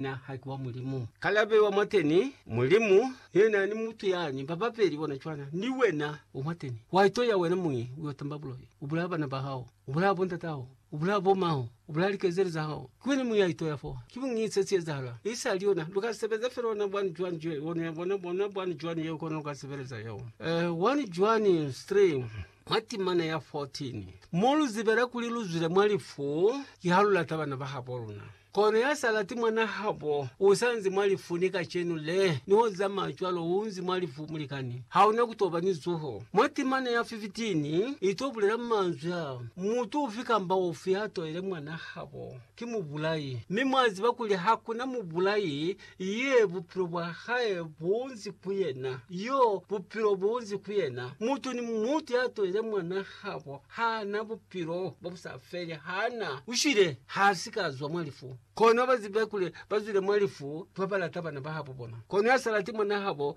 Na ha ki wa Mulimu. Ka labe wa mwateni, Mulimu, yena ni mutu yani, ba babeli bona cwana. Ni wena, wa mwateni. Wa ito ya wena muñi, u yo tamba buloi. U bulaya bana ba hao. U bulaya bo ndat'aho. U bulaya bo ma'ho. U bulaya likezeli za hao. Ki wena muñi ya ito ya fo. Ki buñi se si ezahala. I sali yona. Lu ka sebeza fela ona bwani cwani cwee. Ona, ya bona, bona bwani cwani yeo kona lu ka sebeleza yeo. Eh, wani cwani, Stream, mwa timana ya 14. Mo lu zibela kuli lu zwile mwa lifu, ki ha lu lata bana ba habo luna. Kono ya sa lati mwanaa habo u sa nzi mwa lifu ni kacenu le, ni ho zamaya cwalo u nzi mwa lifu, mulikani. Ha u na ku to ba ni zuho. Mwa timana ya 15 i to bulela manzwi a, Mutu ufi kamba ufi ya toile mwanaa habo, ki mubulai. Mi mwa ziba kuli ha ku na mubulai Ye bupilo bwa hae bunzi ku yena, yo bupilo bunzi ku yena. Mutu ni mutu ya tolile mwan'a habo ha na bupilo bo bu sa feli, ha na. U shwile, ha si ka zwa mwa lifu. Kono ba zibe kuli ba zwile mwa lifu ba ba lata bana ba habo bona. Kono ya sa lati mwan'a habo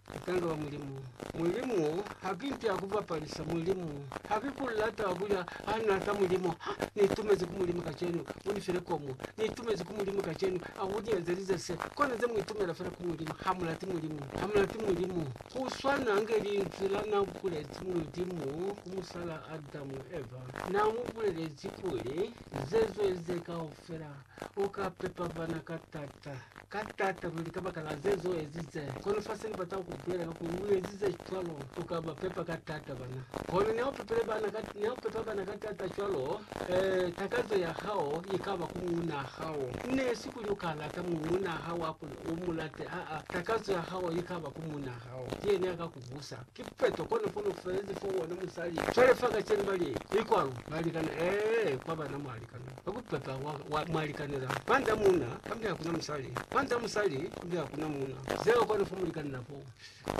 Tanga wa Mulimu. Mulimu habi mpi akubapalisa Mulimu habi bulata wa bulya ha nata Mulimu ha nitumezi ku Mulimu kacenu unifile komu nitumezi ku Mulimu kacenu akuniezelize se kona ze muitumela fela ku Mulimu hamulati Mulimu hamulati Mulimu kuswana nge linzwi la na bulezi Mulimu ku musala Adamu Eva na mubulelezi kuli zezwe ze kaufela U ka pepa bana ka t'ata, ka t'ata luli kabakala ze z'o ezize. Kono fa se ni bata ku bulela ka kuli u ezize cwalo, u ka ba pepa ka t'ata bana. Kono niha u pepile bana ka, niha u pepa bana ka t'ata cwalo, eh, takazo ya hao i ka ba ku muunaa hao. Ne si kuli u ka lata muunaa hao ha kuli u mu late, aa, takazo ya hao i ka ba ku muunaa hao. Ki yena ya ka ku busa. Ki peto, kono fa lu felezi fo wona musali. Cwale fa kacenu bali, I kwalo? Balikana, Ee, kwa bana mwalikana. Kwa kupepa kwa, kwa mwa likanela. Kwanda muna, kambe hakuna musali. Kwanda musali, kambe hakuna muna. Zeo kwa nofo mulikanela po.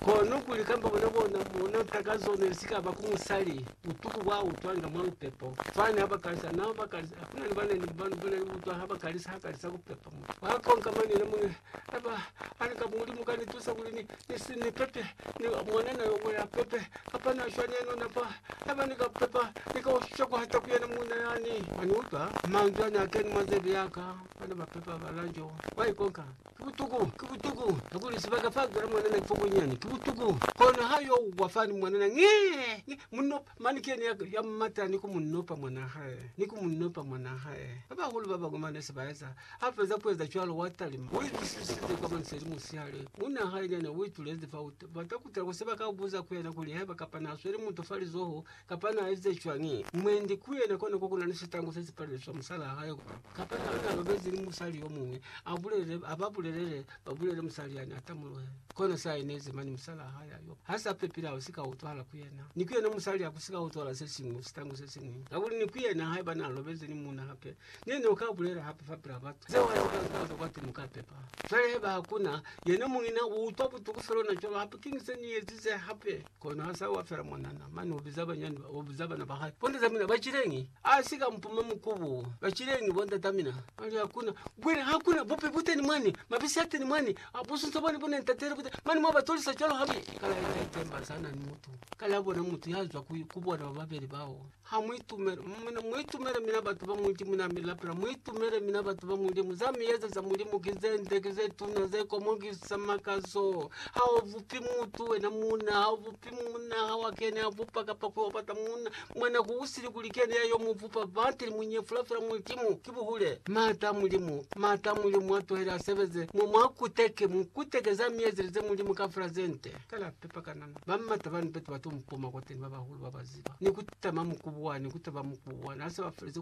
Kono kuli kambe bona bona bona ntaka zone sikaba ku musali. Utuku bwa utwanga mwa lupepo. Fani haba kalisa, nao bakalisa. Hakuna ni bana ni bana bona utwa haba kalisa hakalisa kupepa mu. Kwa konka mane na mune. Aba, Ani kaba Mulimu ka ni tusa kuli ni, ni si ni pepe, ni ba mwana na yo mwe ya pepe, kapa na shwa neno na fa. Haiba ni ka pepa, ni ka ushisha ku hata ku yena muuna ya ni. Wa ni utwa? Manzwi a ne a keni mwa zebe ya ka, ba ne ba pepa ba Lanjo. Wa ikonka? Ki butuku! Ki butuku! Kakuli sibaka fa a zwela mwanana ki fo kunyani. Ki butuku! Kono ha yo wa fani mwanana, Ngee! Ngee! Munno, Mane kene ya, ya mumata ni ku mu nopa mwanaa hae, ni ku mu nopa mwanaa hae. Ba bahulu ba bañwi mane se ba eza. Ha feza ku eza cwalo, wa talima. U itusisize kwa maniseli musihale, muuna hae nyana u itulezi fao. U bata ku tala ku se ba ka buza ku yena kuli haiba kapa na sweli mutu fa lizoho, kapa na ezize cwañi. Mwendi ku yena kona ko ku na ni sitangu se si palelezi swa musalaa hae, kapa na, na lobezi ni musali yo muñwi, a bulele, a ba bulelele Babulele musali yani atamulwe. Kono sa enezi mani musalaa hae ayo ha sa pepile au sika utwahala ku yena, ni ku yena musali aku sika utwala se siñwi sitangu se siñwi. Kakuli ni ku yena haiba na lobezi ni muuna hape, ne ni uka bulela hape fapilaa batu zeo ha sika zwa zwa kwati muka pepa. Cwale haiba hakuna, yena muñina u utwa butuku feluna cwalo hape kiñi se ni ezize hape? Kono ha sa wa fela mwanana, mane ubiza banyani ba, ubiza bana ba hae, Bondata mina bacilengi? A si ka mpuma mukubu, bacilengi bondata mina. Mane hakuna, bwile hakuna bupe buteni mwani, mabisi ateni mwani, busunso bwani bune ntateni buteni, mane mwa ba tolisa cwalo habi? Kale aita itemba sana ni mutu, kale abona mutu ya zwa ku, ku bona ba babeli bao. Ha mu itumela, mina, mu itumela mina batu ba muiti muna mi lapela, mu itumele mina batu ba Mulimu. Za mi yeza za Mulimu ki ze nde, ki ze tuna, ze komokisa makazo. Ha u bupi mutu wena muna, ha u bupi muna, ha wa kene a bupa kapa ku yo bata muna. Mwana ku usili kuli ki yena ya yo mu bupa, but li mu nyefula fela Mulimu. Ki buhule. Maata a Mulimu, maata a Mulimu a tuhele a sebeze mo mwa kuteke, mu kuteke za mi yezelize Mulimu kafela ze nde. Ka la pepa kanana, ba m'ata bani batu ba to mupoma kwateni, ba bahulu ba ba ziba, ni ku tama mukubu wani, ku taba mukubu wani, ha se ba feleze